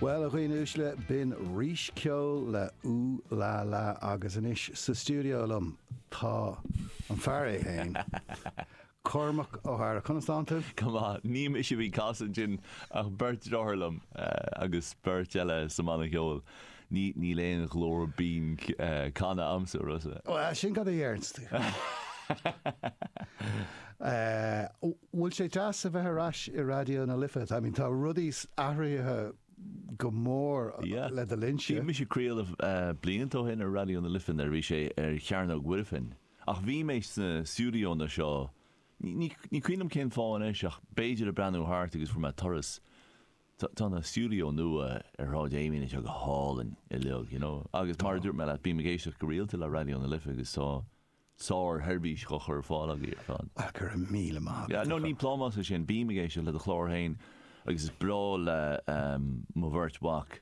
Bhuel, a dhaoine uaisle, b'in Rís le Ooh La La agus anois sa stiúideo liom tá an fear é fhéin, Cormac Ó hEadhra. Conas tá tú? Go maith. Ní mise a bhí casadh ansin ach beirt deartháir liom agus beirt eile sa mbanna ceoil. Níl aon ghlór binn canta a'msa. Ó, sin cad a déarfá. Bhfuil sé deas a bheith ar ais i Raidió na Life? I mean, tá rudaí athraithe go mór le do linnse. Bhí mise ag craoladh blianta ó shin ar Raidió na Life nuair a bhí sé ar Chearnóg Mhuirfean. Ach bhí mé sna stiúideóanna seo, ní cuimhin liom cén fáth anois ach b'fhéidir ag breathnú thart agus fuair mé turas. Tá an stiúideo nua ar Shráid Amiens anseo go hálainn uilig, you know, agus mar a dúirt mé leat, bím ag éisteacht go rialta le Raidió na Life agus tá sár-sheirbhís á chur ar fáil agaibh ar fad. Á, go raibh míle maith agat. Yeah, no, ní plámás é sin, bím ag éisteacht le do chlár féin agus is breá le mo bheirt mhac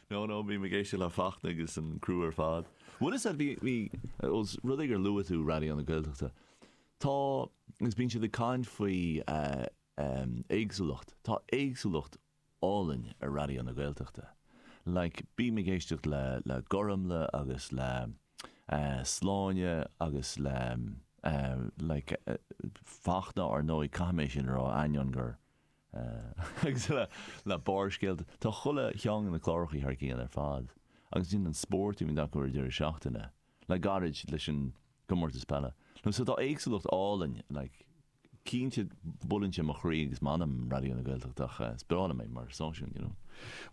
No, no, bím ag éisteacht le Fachtna agus an criú ar fad. Bhuel is ea, bhí, bhí, os rud é gur luaigh tú Raidió na Gaeltachta, tá, agus bíonn sé ag caint faoi éagsúlacht, tá éagsúlacht álainn ar Raidió na Gaeltachta. Like, bím ag éisteacht le, le Gormlaith agus le Sláine agus le like Fachtna, ár ndóigh, caithfidh mé sin a rá, ainneoin gur. agus le Barrscéalta. Tá chuile cheann de na clárachaí thar cionn ar fad agus ansin an spórt a bhíonn acu ag deireadh seachtaine, le gairid leis an gcomórtas peile, you know, so tá éagsúlacht álainn, like, cinnte buaileann sé mo chroí agus m'anam, Raidió na Gaeltachta ach is breá liom é mar stáisiún, you know.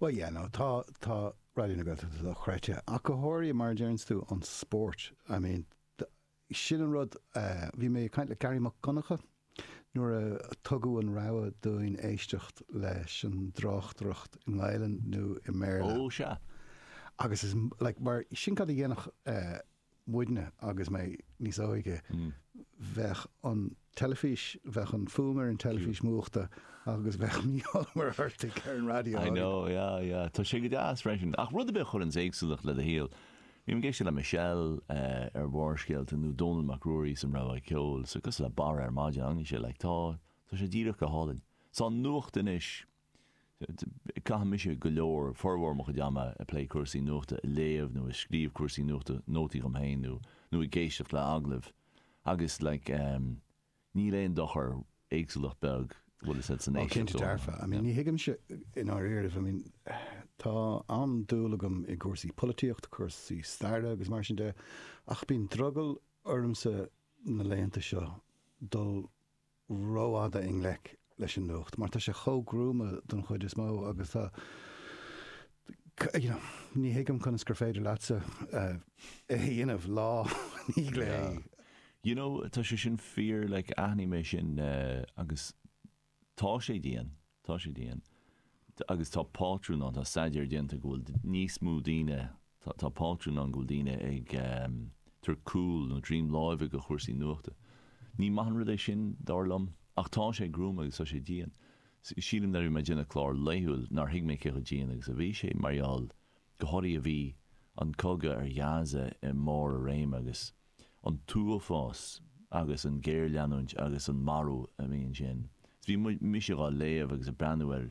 Bhuel, yeah, no, tá, tá Raidió na Gaeltachta dochreidte, ach go háirithe, mar a deireanns tú, an spórt, I mean, Sin an rud. Bhí mé ag caint le Gearaí Mac Donncha nuair a tugadh an rogha dúinn éisteacht leis an dtráchtaireacht i nGaelainn nó i mBéarla. Ó, sea. Agus is, like, mar, sin cad a dhéanfadh muidne agus mé níos óige, bheadh an, teilifís, bheadh an fuaim ar an teilifís múchta agus bheadh Mícheál Ó Muircheartaigh ar an raidió. I know, yeah, yeah. Tá sé go deas freisin. Ach rud ar bith a chuireanns éagsúlacht le do shaol. Bím ag éisteacht le Michelle ar Bharrscéalta nó Dónall Mac Ruairí san Rogha Ceoil, so cosúil le Barra ar maidin, an é sin? Like tá, tá sé díreach go hálainn. Sa nuacht anois. Caitheann mise go leor, formhór mo chuid ama ag plé cúrsaí nuachta, ag léamh nó ag scríobh cúrsaí nuachta, nótaí dhom féin nó nó ag éisteacht le agallaimh agus like ehm níl aon dochar, éagsúlacht bheag, bhuel is as an Ó cinnte éisteacht ó dearfa, I mean tuigimse i ndáiríribh, I mean tá an-dúil agam i gcúrsaí polaitíochta, cúrsaí staire agus mar sin de ach bíonn drogall ormsa na laethanta seo dul rófhada i ngleic leis an nuacht mar tá sé chomh gruama don chuid is mó agus tá you know ní thuigim conas gur féidir leatsa é dhéanamh lá i ndiaidh lae. You know tá sé sin fíor like aithním é sin agus tá sé dian Tá sé dian. Agus tá pátrún ann, tá staidéar déanta go bhfuil níos mó daoine, tá pátrún ann go bhfuil daoine ag tabhairt cúl nó droim láimhe do chúrsaí nuachta. Ní maith an rud é sin, dar liom, ach tá sé gruama agus tá sé dian. Sílim nuair a bhí mé ag déanamh clár laethúil nár thuig mé cé chomh dian agus a bhí sé mar gheall go háirithe bhí an cogadh ar Ghaza i mbarr a réime agus an t-uafás agus an géarleanúint agus an marú a bhí ansin. Is bhí mise dhá léamh agus ag breathnú air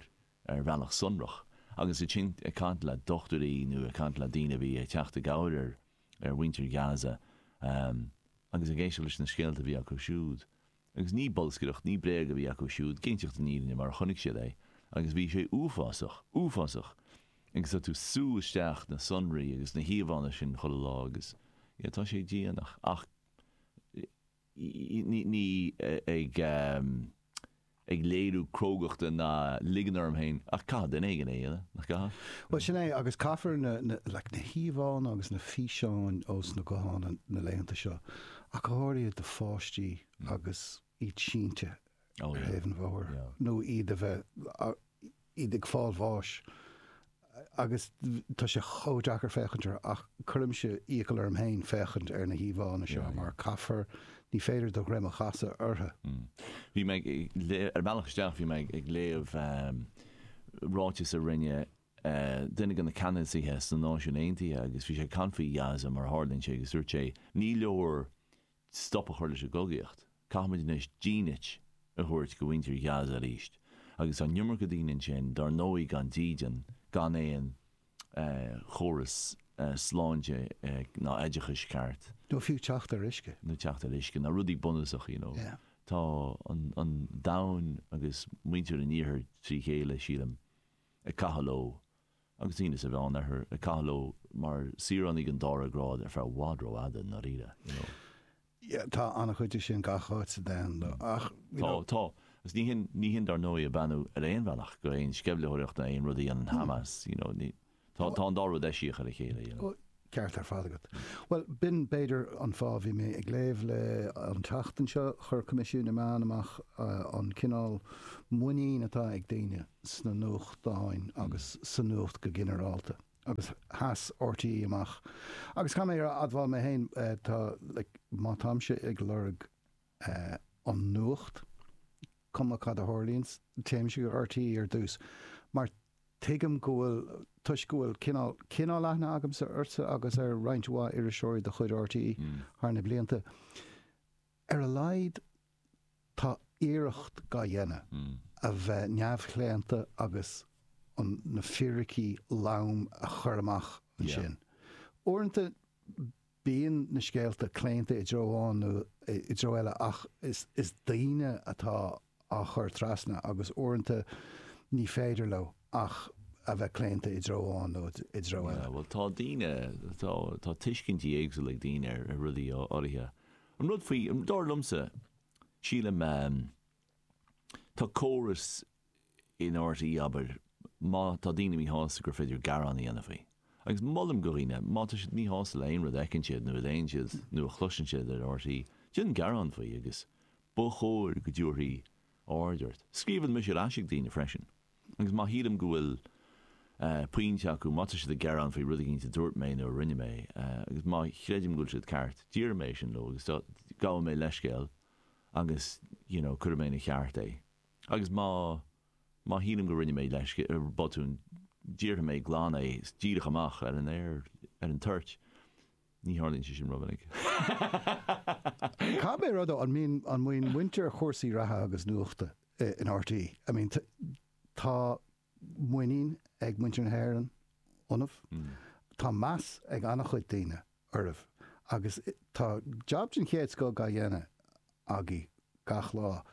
ar bhealach sonrach agus ansin ag caint le dochtúirí nó ag caint le daoine a bhí ag teacht i gcabhair ar mhuintir Gaza agus ag éisteacht leis na scéalta a bhí acu siúd. Agus ní bolscaireacht, ní bréag a bhí acu siúd, ag inseacht na fírinne mar a chonaic siad é, agus bhí sé uafásach, uafásach, agus tá tú ag sú isteach na sonraí agus na híomhánna sin chuile lá agus, yeah, tá sé dian ach, ach ní, ní ag, ag léiriú crógachta ná ag ligean orm féin ach caithfidh duine éigin é a dhéanamh, nach gcaithfidh? Bhuel, sin é, agus caithfear na, na, like, na híomhánna agus na físeáin ós na gutháin na laethanta seo ach go háirithe do pháistí agus iad sínte ar thaobh an bhóthair nó iad a bheith, iad ag fáil bháis agus tá sé chomh deacair féachaint orthu ach cuirimse iachall orm féin féachaint ar na híomhánna seo mar caithfear, ní féidir do dhroim a chasadh orthu. Bhí mé ag, ar an mbealach isteach bhí mé ag léamh ráiteas a rinne duine de na ceannasaithe sna Náisiúin Aontaithe agus bhí sé ag caint faoi Ghaza mar a tharlaíonn sé agus dúirt sé, Ní leor stop a chur leis an gcogaíocht. Caithfimid anois dínit a thabhairt do mhuintir Ghaza arís. Agus tá an iomarca daoine ansin, dar ndóigh, gan dídean, gan aon chóras sláinte ná oideachais ceart. Nó fiú teacht ar uisce. Nó teacht ar uisce, ná rudaí bunúsacha, you know. Tá an domhan agus muintir an iarthair tré chéile, sílim. ag caitheamh leo, agus daoine sa Mheánoirthear ag caitheamh leo mar saoránaigh den dára grád ar feadh i bhfad rófhada, i ndáiríre, you know. Yeah, tá an-chuid de sin gach áit sa domhan, though, ach, you know. Tá, tá. Agus ní hin, ní hin, dar ndóigh, ag beannú ar aon bhealach do aon sceimhlitheoireacht nó aon rud a dhéanann Hamas, you know, ní, tá, tá an dá rud eisiach ar a chéile, you know. Ceart ar fad agat. Bhuel, b'in, b'fhéidir, an fáth a bhí mé ag léamh leis an tseachtain seo. Chuir Coimisiún na Meán amach an cineál muinín atá ag daoine sna nuachtáin agus sa nuacht go ginearálta agus sheas RTÉ amach agus, caithfidh mé a admháil mé féin, tá, like, má táimse ag lorg, a an nuacht, cuma cad a tharlaíonns, téimse go RTÉ ar dtús, mar tuigim go bhfuil, toisc go bhfuil cineál, cineál aithne agamsa ortsa agus ar roinnt mhaith iriseoirí de chuid RTÉ thar na blianta. Ar a laghad tá iarracht dá dhéanamh a bheith neamhchlaonta agus an, na fíricí loma a chur amach ansin. Uaireanta Bíonn na scéalta claonta i dtreo amháin nó i dtreo eile ach is daoine atá á chur trasna agus uaireanta ní féidir leo ach a bheith claonta i dtreo amháin nó i dtreo eile. Bhuel, tá daoine, tá tuiscintí éagsúla ag daoine ar rudaí áirithe. An rud faoi, dar liomsa, sílim, tá córas in RTÉ, abair, má tá daoine míshásta gur féidir gearán a dhéanamh faoi. Agus molaim do dhaoine, má tá siad míshásta le haon rud a fheiceann siad nó a léann siad nó a chloiseann siad in RTÉ, déan gearán faoi agus ba chóir go dtabharfaí aird ort. Scríobhaim mise ar ais ag daoine freisin agus má shílim go bhfuil pointe acu, má tá siad ag gearán faoi rud éigin a dúirt mé nó a rinne mé agus má chreidim go bhfuil siad ceart, déarfaidh mé é sin leo agus gabhfaidh mé leithscéal agus you know cuirfidh mé ina cheart é. Agus má, má shílim go rinne mé, let's say, botún, déarfaidh mé glan é, is díreach amach ar an aer, ar an toirt. Ní tharlaíonn sé sin rómhinic. Cá mhéad rud ó, an mbíonn, an mbíonn muintir chúrsaí reatha agus nuachta in RTÉ, I mean, tá, muinín ag muintir na hÉireann ionaibh. Tá meas ag an-chuid daoine oraibh agus tá jab den chéad scoth á dhéanamh agaibh gach lá.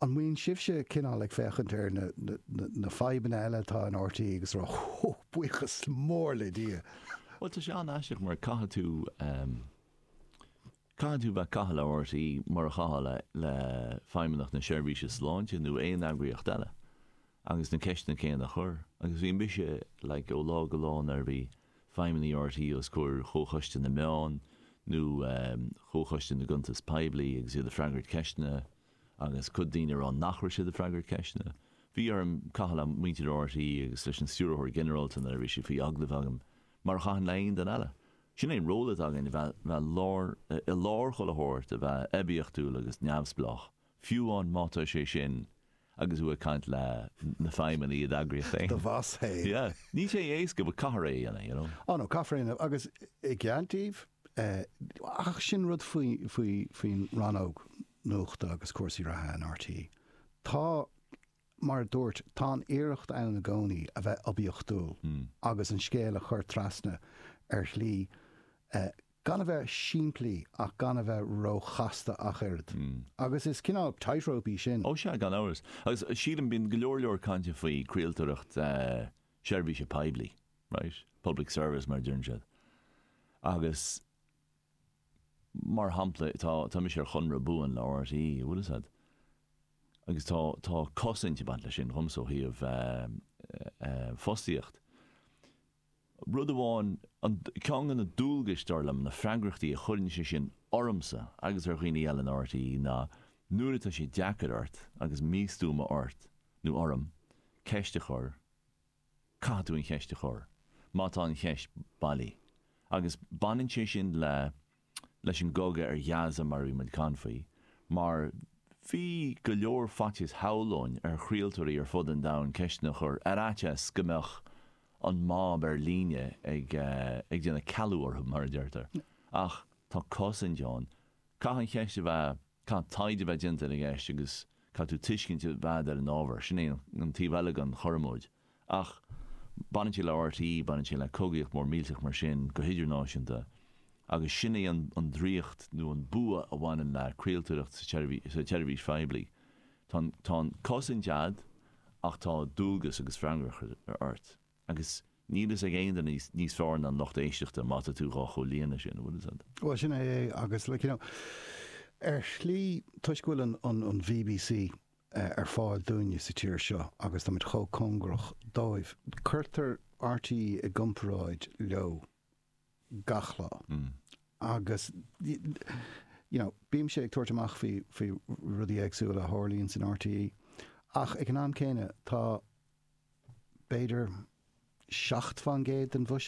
An mbíonn sibhse cineál ag féachaint ar na fadhbanna eile atá in RTÉ agus ag rá 'Ó, buíochas mór le Dia'? Bhuel, tá sé an-aisteach mar caithfidh tú. Caithfidh tú bheith ag caitheamh le RTÉ mar a chaithfeá le Feidhmeannacht na Seirbhíse Sláinte nó aon eagraíocht eile agus na ceisteanna céanna a chur agus bhí mise like ó lá go lá nuair a bhí feidhmeannaigh RTÉ os comhair Chomhchoiste na Meán nó Chomhchoiste na gCuntas Poiblí agus iad ag freagairt ceisteanna agus cuid daoine ag rá nach raibh siad ag freagairt ceisteanna. Bhí orm caitheamh le muintir RTÉ agus leis an Stiúrthóir Ginearálta nuair a bhí sé faoi agallamh agam mar a chaithfinn le haon duine eile. Sin é an ról atá againn, a bheith i lár chuile shórt, a bheith oibiachtúil agus neamhspleách, fiú amháin má tá sé sin agus tú ag caint le na feidhmeannaigh i d'eagraíocht féin. Do bhoss féin. Yeah. Níl sé éasca but caithfear é a dhéanamh, you know. Á no, caithfear é a dhéanamh agus i gceart daoibh, ach sin rud faoin rannóg nuachta agus cúrsaí reatha in RTÉ. Tá. Mar a dúirt, tá an iarracht ann i gcónaí a bheith oibiachtúil agus an scéal a chur trasna ar shlí gan a bheith simplí ach gan a bheith róchasta ach oiread. Agus is cineál tightrope í sin. Ó sea, gan amhras. Agus sílim, bíonn go leor leor cainte faoi craoltóireacht seirbhíse poiblí, right? Public service mar a deireann siad. Agus. mar shampla, tá mise ar chonradh buan le RTÉ, an bhfuil fhios agat, agus tá tá cosaint ag baint leis sin dhomsa ó thaobh fostaíocht. Rud amháin, an, ceann de na dualgais, dar liom, na freagrachtaí a chuireann sé sin ormsa agus ar dhaoine eile in RTÉ ná nuair atá sé deacair ort agus míchompordach ort nó orm ceist a chur, Caithfidh tú an cheist a chur, má tá an cheist bailí. Agus baineann sé sin le, leis an gcogadh ar Ghaza mar a bhí muid ag caint faoi, mar bhí go leor faitíos shamhlóinn ar chraoltóirí ar fud an domhain ceisteanna a chur ar fhaitíos go mbeadh an mob ar líne ag, ag déanamh cealú orthu mar a deirtear. Ach tá cosaint ann. Caithfidh an cheist a bheith. Caithfidh taighde a bheith déanta ar an gceist agus caithfidh tú tuiscint a bheith a'd ar an ábhar. Sin é an taobh eile den chormóid. Ach baineann sé le RTÉ, baineann sé le cogaíocht mhór mhillteach mar sin go hidirnáisiúnta agus sin é an draíocht nó an bua a bhaineann le craoltóireacht sa tseirbhís phoiblí. Tá, tá an chosaint a'd ach tá dualgas agus freagracht ort. Agus níl fhios ag aon duine níos fearr ná an lucht éisteachta má tá tú dhá chomhlíonadh sin, an bhfuil fhios a'd? Bhuel, sin é é agus like, you know, ar shlí toisc go bhfuil an BBC ar fáil dúinne sa tír seo agus táimid chomh cóngarach dóibh, cuirtear RTÉ i gcomparáid leo. gach lá agus you know bímse ag tabhairt amach faoi faoi rudaí éagsúla a tharlaíonn san RTÉ ach ag an am céanna tá b'fhéidir seacht faoin gcéad den bhuiséad